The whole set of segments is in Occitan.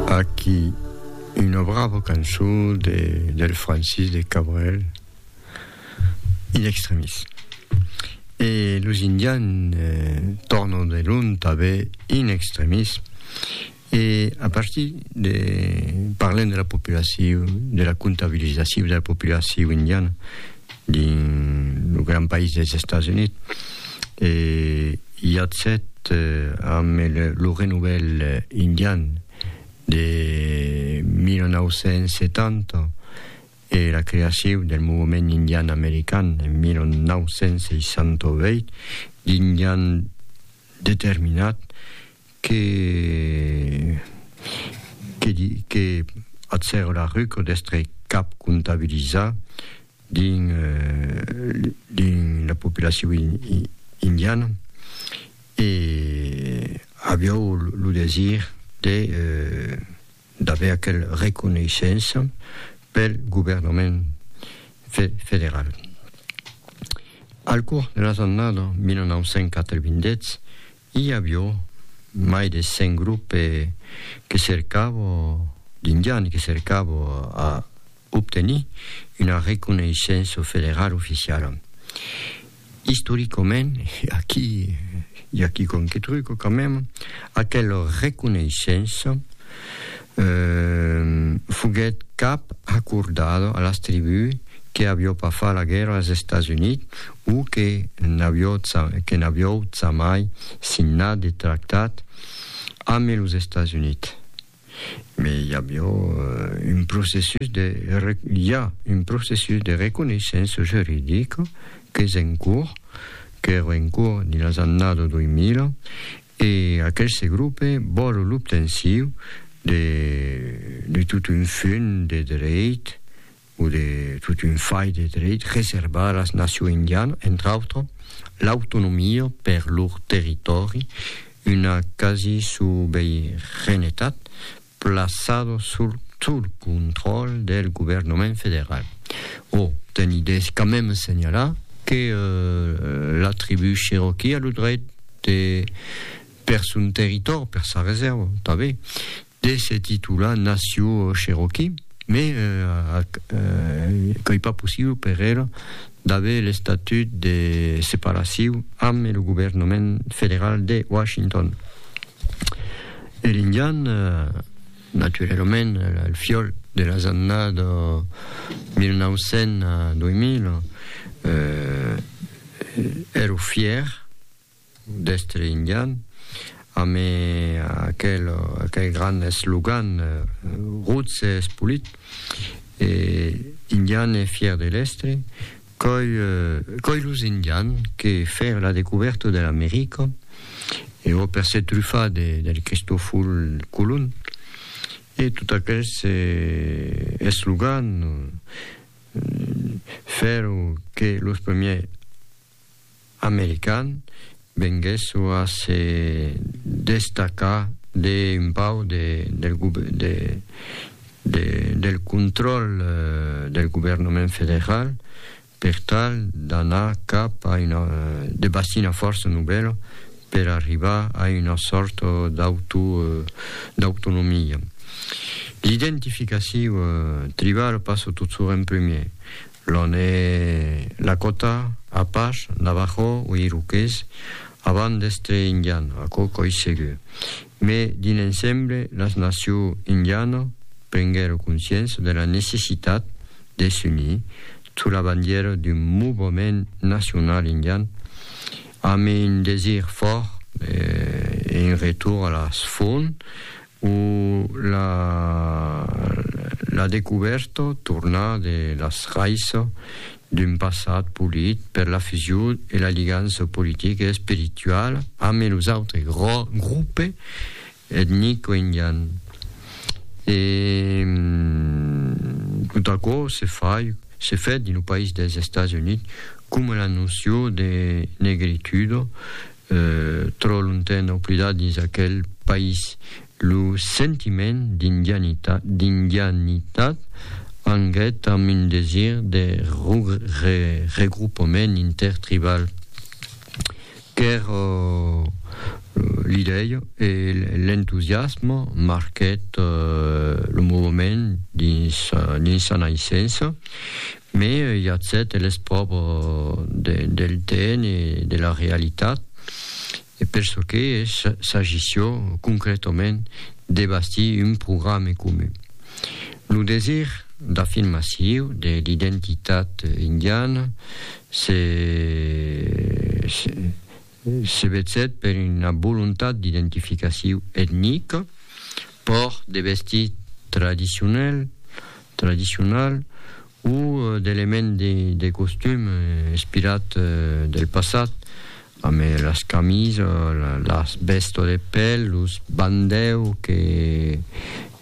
Aquí una brava cançon de, del Francis de Cabrel, in extremis. E los indians eh, tornan de lon tanbe in extremis. E a partir de, parlem de la populacion, de la comptabilizacion de la populacion indiana, Dins lo gran país dels Estats Units, Yatset amb lo Renouvèl Indian de 1970 e la creacion del Movement Indian American en 1968, d'Indians determinats Que que di que ath Sèrre Larruco d'èstre cap comptabilizat dins dins la populacion indiana e aviáu lo desir de d'aver aquel reconeishença pel governament federal. Al cors de las annadas 1980, I avió mai de cent grupe que cercavo d'indiani que cercavo a obtenir una reconeissença federala oficiala. Istoricament, e aquí i aquí qualque truco quand même, aquela reconeissença Foguèt cap acordado a las tribús que avió pas far la guèrra als Estats Units o que n'avió jamai signat de tractat ambe los Estats Units. Mai i avió un processus de, i a, un processus de reconeissença juridica qu'es en cours, qu'èra en cours dins las annadas 2000 E aqueste grope vòlu l'obtensiu de de tot un fun de dreit o de tot un fai de dreit reservar las nacion indiana, entre autre, l'autonomia per lor territòri, una quasi-sobeiranetat plaçado sul sul contròl del governament federal. O, teni des quand même senhalar que la tribu Cherokee a lo dreit de, per son territòri, per sa reserva, tanben, de se titular nacion Cherokee, mais qu'ei pas possible per ela d'aver l'estatut de separacion amb lo governament federal de Washington. E l'indian, naturalament, el fiòl de las annadas 1900 a 2000, èro fièr d'èstre indian, amb aquel grand eslogan Roots es polit e indian e fièr de l'èstre. Coi, coi los Indians que fèr la decubèrta de l'America, e ò per se trufar de, del Cristoful Colon, e tot aquels eslogans, fèron que los premiers, american venguèsso a se destacar d'un pauc del contròl del governament federal per tal d'anar cap a una de bastir una fòrça novèla per arribar a una sòrta d'autonomia. L'identificacion tribala passa tot soren primièr L'on e Lakota, Apash, Navajo o Iroqués, avant d'èstre Indian, aquò qu'òi segur. Me dins l'ensemble, las nacion Indiano prenguèron consciéncia de la necessitat de s'unir sous la bandièra d'un movement nacional Indian amb un desir fòrt e un retour a las fonts O la la decubèrta torna de las raisas d'un passat polit per la fusion e la ligança politica e espirituala ame los autres grupe etnico indian. E tot aquò se fai se fèt dins lo país dels Estats Units coma la noció de negritudo Trò lonten oblidat dins aquel país, lo sentiment d'indianitat anguèt amb un desir de regroupament intertribal qu'èr l'idèia e l'entusiasme marquèt lo movement dins sa naissença. Mai i a cet eles pròbo del tn e de la realitat, e per çò que s'agissió concrètament de bastir un programe comun. Lo desir d'afirmaciu de l'identitat indiana se Se vesèt per una volontat d'identificaciu etnica, pòrt de vestit tradicionel, tradicional, o d'element de costum inspirat del passat, amé las camisas, las vèsto de pèl, los bandèu que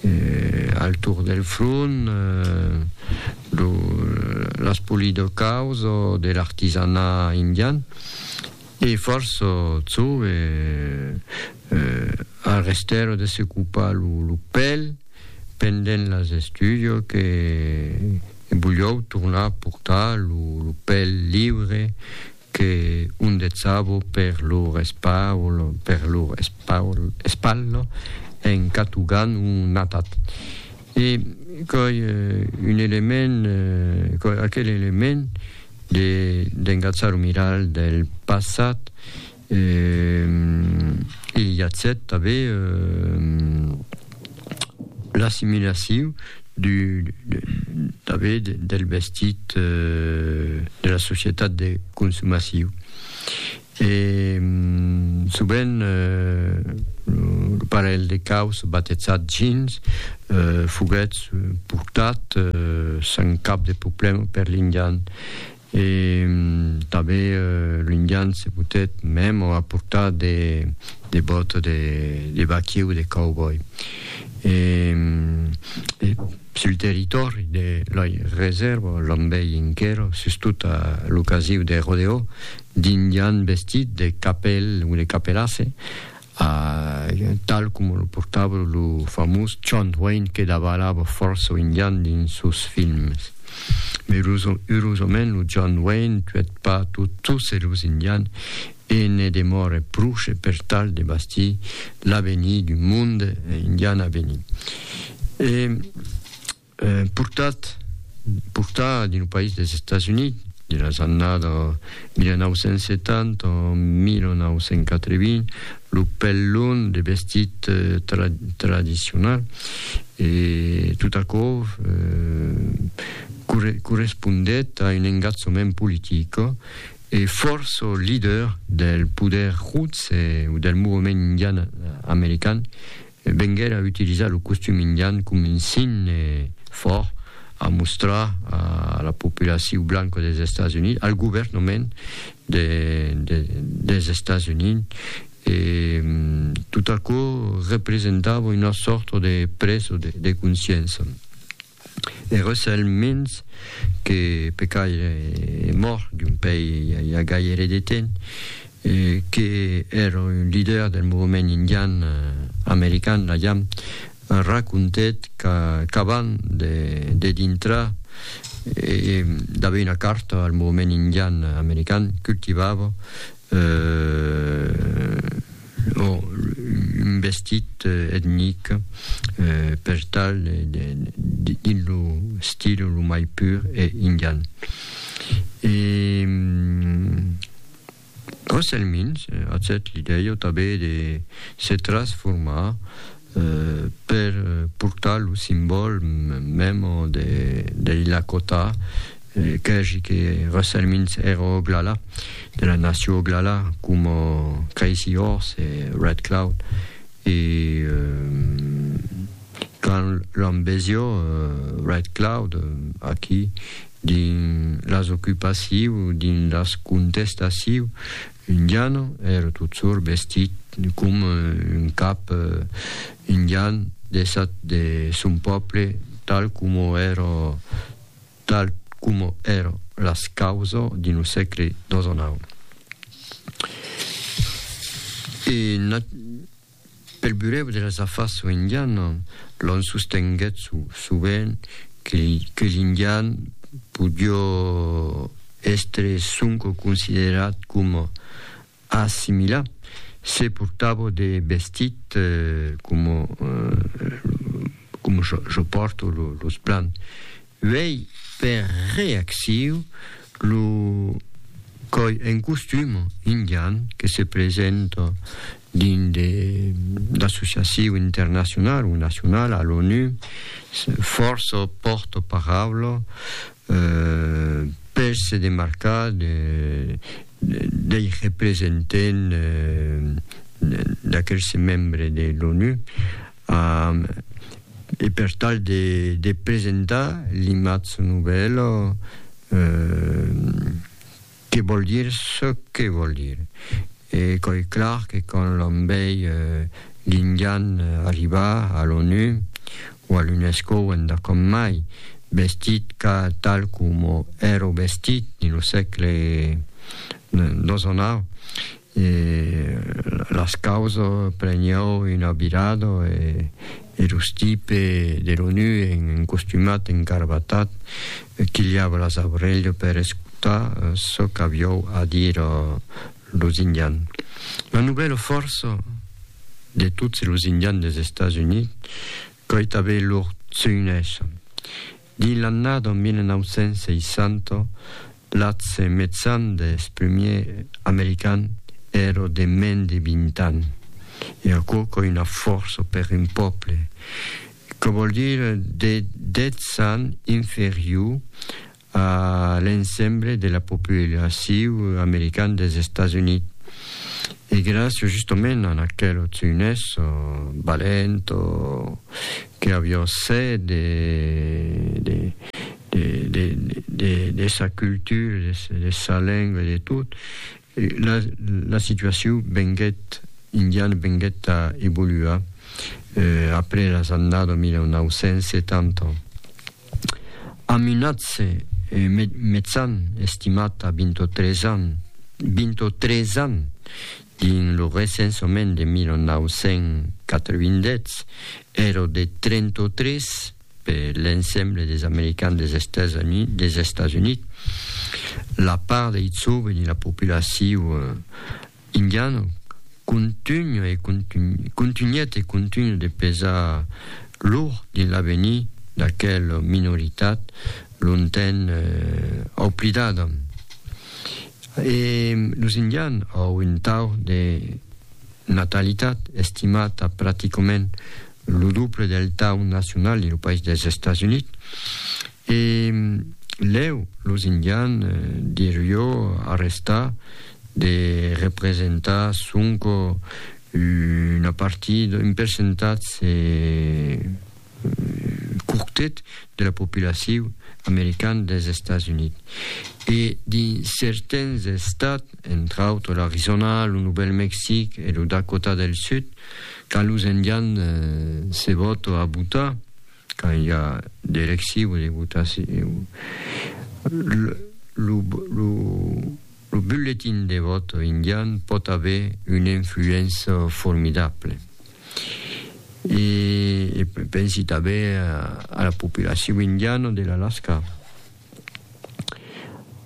Al torn del front, lo l'espoli del caos o de l'artisanat indian e fòrça çò e al restèr de se copar lo pèl pendent las estudios que bulhòu tornar portar lo pèl liure Que un detsabo per lor espaul, per lor espaul, espalha, en catugant un atat. E qu'ei un element, qu'ei aquel element de, d'engatzar o mirar del passat, e i a cet, tanben, l'assimilaciu du tanben del vestit de la societat de consumaciu e sovent lo parelh de caus batetzat Jeans foguèt portat san cap de problèma per l'indian E tanben l'Indian se potèt mèm o aportar de bòta de vaquier o de cowboy. E sul territòri de la resèrva l'enbei enquera, sustot a l'ocasiu de rodeo, d'Indian vestit de capèl o de capelasse, A tal coma lo portava lo famós John Wayne que davalava fòrça o indian dins sos films. Mai urosament lo John Wayne tuèt pas tot tosse los indian e ne demòre pruche per tal de bastir l'avenir d'un monde indian avenir. E Portat, portar dins lo país dels Estats Units dins las annadas 1970 o 1980 lo pèl long, de vestit tra, tradicional, e tot aquò corre, correspondèt a un engatzament politic e fòrça leader del poder Roots e del movement indian american Venguèt a utilizar lo costum indian com un signe fòrt a mostrar a la populaciu blanca dels Estats Units, al governament dels Estats Units, e tot aquò representava una sòrta de preso de consciença. E Russell Means, que pe quai es mòrt d'un pei i a gaire de temps, que èra un lider del movement indian american, la jam, racontèt qu'abans de dintrar e d'aver una carta al movement indian american, cultivava, un vestit etnic per tal de dins lo stil lo mai pur e indian. E prochèlmins, atzèt l'idèia tanben de se transformar per portar lo simbòl mèm dei Lakota, qu'ègi que resselmins ero Oglala, de la nacion Oglala, coma Crazy Horse e Red Cloud. E quand l'òm vesió Red Cloud aquí dins las ocupacius, dins las contestacius, Indian, ère totsor vestit com un cap indian desat de son pòble, tal coma ère tal coma ère las causas dins lo sègle xix. E Pel burèu de las afars soïndiana, l'on sostenguèt sovent que l'indian podió èstre sonque considerat coma assimilat se portava de vestit coma jo pòrto los blancs Uèi per reacciu lo còi en costum indian que se presenta dins de d'associaciu internacional o nacional a l'ONU fòrça pòrta paraula per se demarcar de dei representent d'aquel se membre de l'ONU. Am, e per tal de, de presentar l'imatge nouvèl, que vòl dire çò que vòl dire. E quò es clar que quand l'òm vei l'indian arribar a l'ONU o a l'UNESCO o enda com mai, vestit ca tal coma èro vestit dins lo sègle xix, E las causo preniou una virada e los tipe de l'ONU en costumat en garbatat quilhava las aurelhas per escotar çò qu'aviou a dire los indians. La novèla fòrça de tots los indians dels Estats Units coitavei lor tsuinèssa. Dins l'annada 1960, l'atge mejan dels prumiers americans èra de mens de 20 ans. E aquò qu'ei una fòrça per un pòble, que vòl dire de 10 ans inferior a l'ensemble de la populacion americana dels Estats Units. E gràcia justament a aqueles junhèths valents que avián set de de sa cultura, de sa lenga, de tot, la situacion venguèt, indiana venguèt a evoluar après las annadas 1970. Amb un atge metzan estimat a 23 ans, 23 ans! Dins lo recensament de 1987, èra de 33 per l'ensemble des Americans des Estats Units. La part de Hitsuo dins la populacion indiana contunha e contunhèt e contunha de pesar lourd dins l'avenir d'aquela minoritat longtemps oblidada. E los Indian au un tau de natalitat estimat a practicament lo doble del tau nacional de lo país dels Estats Units. E lèu los Indian dirió arrestar de representar sonque una partida, un percentatge. quortet de la populaciu american dels Estats Units e dins certains estats, entre autres l'Arizona, lo Novèl Mexic e lo Dakota del Sud, quand los Indians se vòto a votar, quand i a d'elecciu e de votaciu, lo, lo, lo, Lo bulletin de vòto indian pòt aver una influéncia formidable. E pensi tanben a la populacion indiana de l'Alaska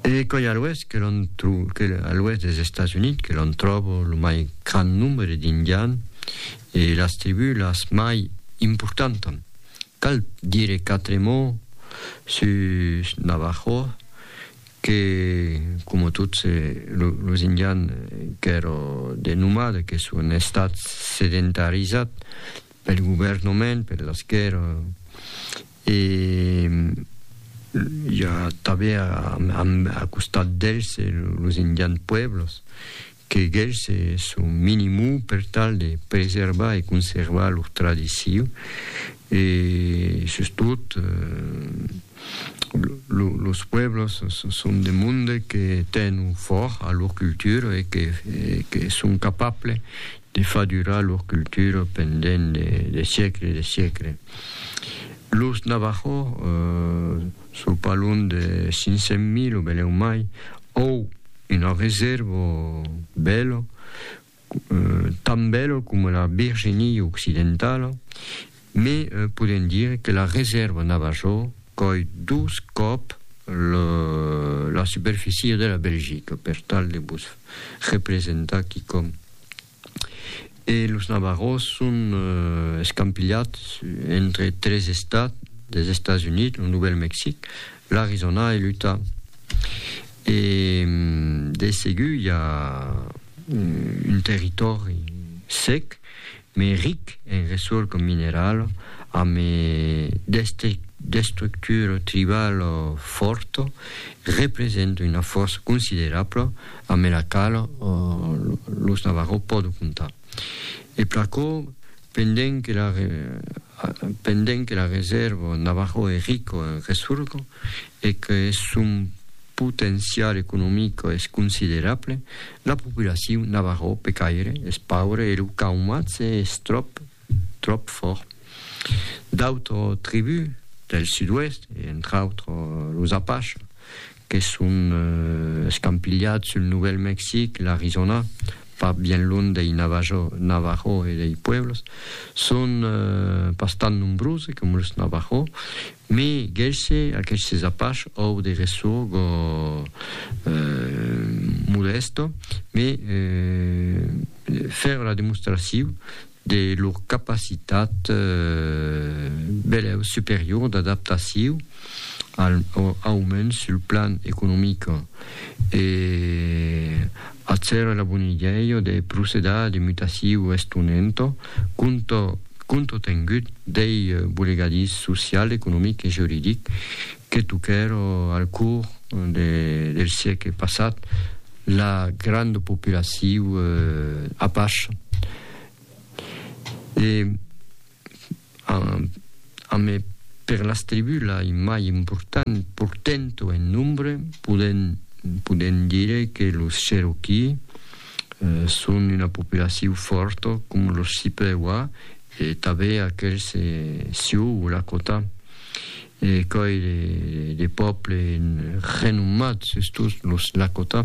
e coi a l'oèst que l'on a l'oèst dels Estats Units que l'on tròba lo mai grand nombre d'indians e las tribús las mai importantas. Cal dire quatre mots sus Navajo que coma tots los indians qu'èra de nomade que son estat sedentarizat pel governament per l'esquèrra e i a tanben a costat d'els los indians pueblos que gèlh se son minimum per tal de preservar e conservar lor tradicion e sustot los pueblos son de monde que tenon fòrt a lor cultura e que son capable de far durar lor cultura pendent de siècles e de siècles. Los Navajos Sò pas lunh de 500 mil o belèu mai, òu una resèrva bèla, tan bèla coma la Virginia Occidentala, me podèn dire que la resèrva Navajò còi dos còp la superficia de la Belgica, per tal de vos representar quicòm. E los navarros son escampilhats entre tres estats dels Estats Units, lo Novèl Mexic, l'Arizona e l'Utah. E de segur i a un territòri sec, mai ric en ressorca minerala, amb d'estructura tribala fòrta, representa una fòrça considerabla ambe la qual los Navarro pòdo comptar. E pr'aquò, pendent que la pendent que la resèrva Navarro es rico en ressorgo e que eth son potencial economic es considerable, la populacion Navarro pe caire es paure e lo caumatge es tròp tròp fòrt. D'autres tribús del sud-oèst, e entre autres los Apaches, que son escampilhats sul Novèl Mexic, l'Arizòna, pas bien lunh dei Navajo e dei pueblos, son pas tan nombroses coma los Navajo, me gèisse aquestes Apache òu de ressour gò modèsto, me fèra la demostraciu de lor capacitat belèu superior d'adaptaciu al aumens sul plan economic e acer la bon'idèia de procedar de mutaciu estonenta contratengut dei bolegadís social, economic e juridic que toquèra al cors del siecle passat. La granda populaciu apache e amé per las tribus lai mai important portento en nombre podem dire que los Cherokee son una populaciu fòrta com los Chippewa e tabé aquels Sioux Lakota. E coi de pòble renommat sus tots los Lakota.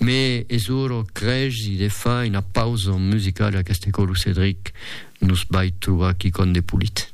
Me es ora crègi de far una pausa musicala qu'este cò lo Cedric nos vai trobar quicòm de polit.